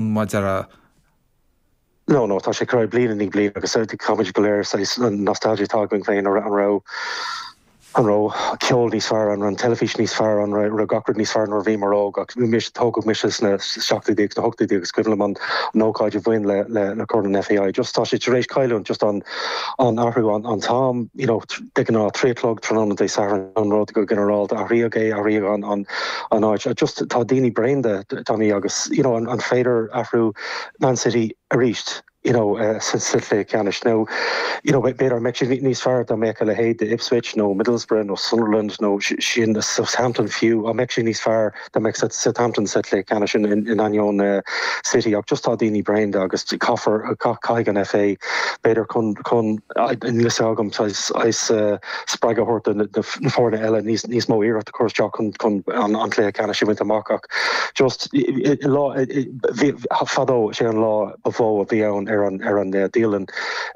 maidir leo nó tá sé ag cur air bliain i ndiaidh bliain agus táimid go léir saghas nostalgia atá againn féin an raibh an raibh ceol níos fearr an raibh an teilifís níos fearr an raibh gach rud níos fearr nuair a bhíomar óg ach anois tógadh mise sna seachtóidí agus na hochtóidí agus is cuimhin liom an an ócáid a bhain le le le corn an FA just tá sé tar éis cailliúint just an an athrú an an t-am you know de ghnáth trí a chlog tráthnóna Dé Sathairn an rud go ginearálta, athraíodh é, athraíodh an an an áit. Just tá daoine bréan de, Tommy, agus you know an an féidir a rá Man City arís you know sa sa chluiche ceannais nó you know b'fhéidir an mbeadh sé níos fearr dá mbeadh a leithéid d'Ipswich nó Middlesbrough nó Sunderland nó sin Southampton fiú, an mbeadh sé níos fearr? dá mbeadh Southampton sa chluiche ceannais in ainneoin City ach just tá daoine bréan de agus caithfear caithfidh an FA b'fhéidir chun chun saghas spreagadh a thabhairt do na foirne eile níos mó iarracht a chur isteach chun an chluiche ceannais a bhaint amach ach just lá fadó sé an lá ba mhó a bhí ann ar an dialann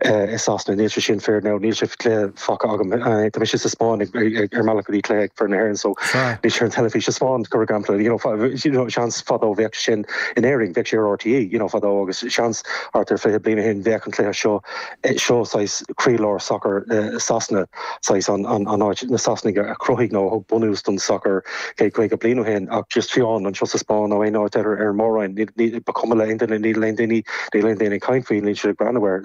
i Sasana níl sé sin fíor nó níl sé fágtha agam. Tá mise sa Spáinn ar mo bhealach go dtí cluiche ag foireann na hÉireann so níl sé ar an teilifís sa Spáinn mar shampla you know seans fadó bheadh sé sin in Éirinn bheadh sé ar RTÉ you know fadó agus seans thart ar fiche bliain ó shin bheadh an cluiche seo seo saghas croílár sacar Sasana saghas an an áit na Sasanaigh a chruthaigh nó a thug bunús don sacar céad caoga bliain ó shin ach just fiú amháin anseo sa Spáinn nó aon áit eile ar an Mór-Roinn ba chuma le aon duine níl aon daoine níl aon daoine ag caint faoi níl siad ag breathnú air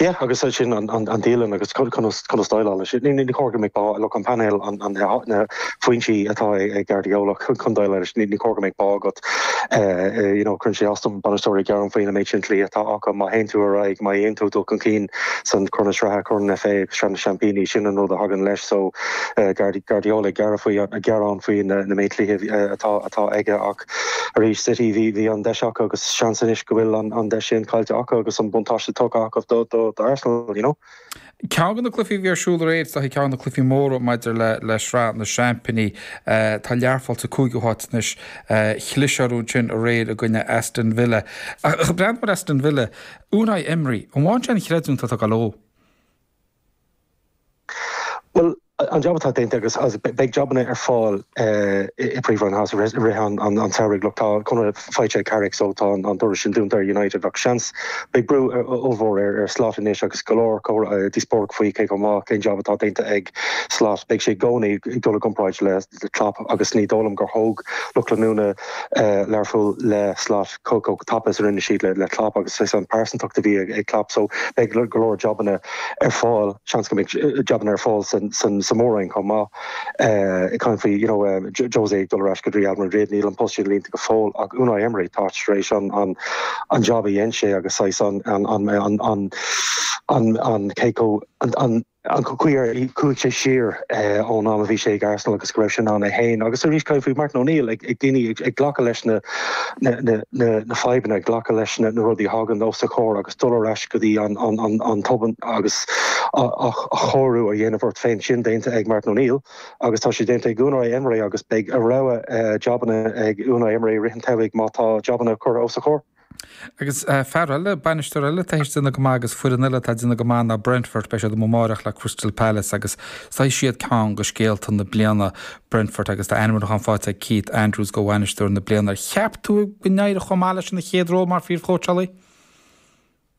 Yeah agus sin an dialann agus conas déileáil leis. Ní chóir go mbeidh bá agat an painéal na foinsí atá ag Guardiola chun déileáil leis. Ní chóir go mbeidh bá agat you know cuireann sé as dom bainisteoirí gearán faoina méid sin cluichí atá acu. Má théann tú ar aghaidh má dhéanann tú dul chun cinn san Corn na Sraithe, Corn an FA agus Sraith na Seaimpíní sin an rud a thagann leis. So Guardiola ag gearán faoi na méid cluichí atá aige ach isteach arís. City, bhí an deis acu agus seans anois go bhfuil an deis sin caillte acu agus an buntáiste tugtha acu do Arsenal, you know. Ceann de na cluichí a bhí ar siúl aréir is ea ceann de na cluichí móra maidir le Sraith na Seaimpíní. Tá Learpholl sa cúigiú háit anois. Chlis orthu ansin aréir i gcoinne Aston Villa. Ach buan mar Aston Villa, Unai Emery, an bhfaigheann sé an chreidiúint atá ag dul dó. Bhuel, an jab atá déanta agus beidh jabanna ar fáil i bPríomhroinn Shasana i rith an tsamhraidh. Look, tá conradh faighte ag Carrick so tá an doras sin dúnta ar United ach seans. Beidh brú ollmhór ar Slot anois agus go leor comhrá, díospóireacht faoi cé chomh maith, cén jab atá déanta ag Slot. Beidh sé i gcónaí ag dul i gcomparáid le Klopp agus ní dóigh liom gur thóg lucht leanúna Learphoill le Slot chomh tapa is a rinne siad le Klopp agus is an phearsantacht a bhí ag Klopp so beidh go leor jabanna ar fáil, seans go mbeidh jabanna ar fáil sa mhór-roinn chomh maith. Caint faoi you know José ag dul ar ais go dtí Real Madrid, níl an post sin líonta go fóill ach Unai Emery tá tar éis an jab a dhein sé agus saghas an an Coco an An cuir í, chuaigh sé siar ón am a bhí sé ag Arsenal agus go raibh sé in ann é féin agus arís caint faoi Martin O'Neill ag ag daoine ag ag glacadh leis na na na na na fadhbanna, ag glacadh leis na na rudaí a thagann os a chomhair agus dul ar ais go dtí an an an an tobar agus a a athchóiriú a dhéanamh ort féin. Sin déanta ag Martin O'Neill agus tá sé déanta ag Unai Emery agus beidh a rogha jabanna ag Unai Emery i rith an tsamhraidh má tá jabanna curtha os a chomhair. Agus fear eile, bainisteoir eile atá théis déanamh go maith agus foireann eile atá ag déanamh go maith ná Brentford. Beidh siad amuigh amárach le Crystal Palace agus is iad ceann de scéalta na bliana, Brentford, agus tá ainmniúchán faighte ag Keith Andrews do bhainisteoir na bliana. Ar cheap tú go n-éireodh chomh maith leis ina chéad ról mar phríomhchóitseálaí?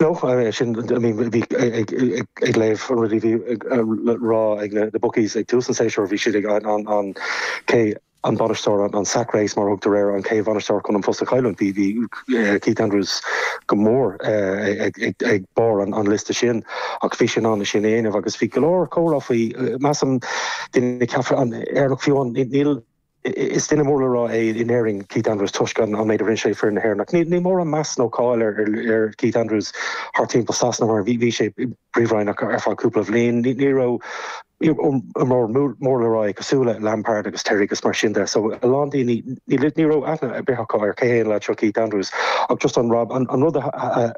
No, sin, I mean, bhí ag léamh an rud a bhí le rá ag na bookies ag tús an tséasúir, bhí siad ag an cé an bainisteoir, an sack race mar a thugtar air an, cén bainisteoir chun an phost a chailliúint, bhí Keith Andrews go mór ag barr an liosta sin ach bhí sé in ann é sin a dhéanamh agus bhí go leor comhrá faoi, measaim, daoine ag ceapadh in Éirinn ach fiú ann, níl. Is duine mór le rá é in Éirinn Keith Andrews toisc an méid a rinne sé foireann na hÉireann ach níl mórán meas nó cáil ar Keith Andrews thart timpeall Sasana mar bhí sé sa phríomhroinn ach ar feadh cúpla bliain. Ní raibh mór le rá é cosúil le Lampard agus Terry agus mar sin de so a lán daoine ní raibh aithne ar bith acu ar cé hé an leaid seo Keith Andrews ach just an rud a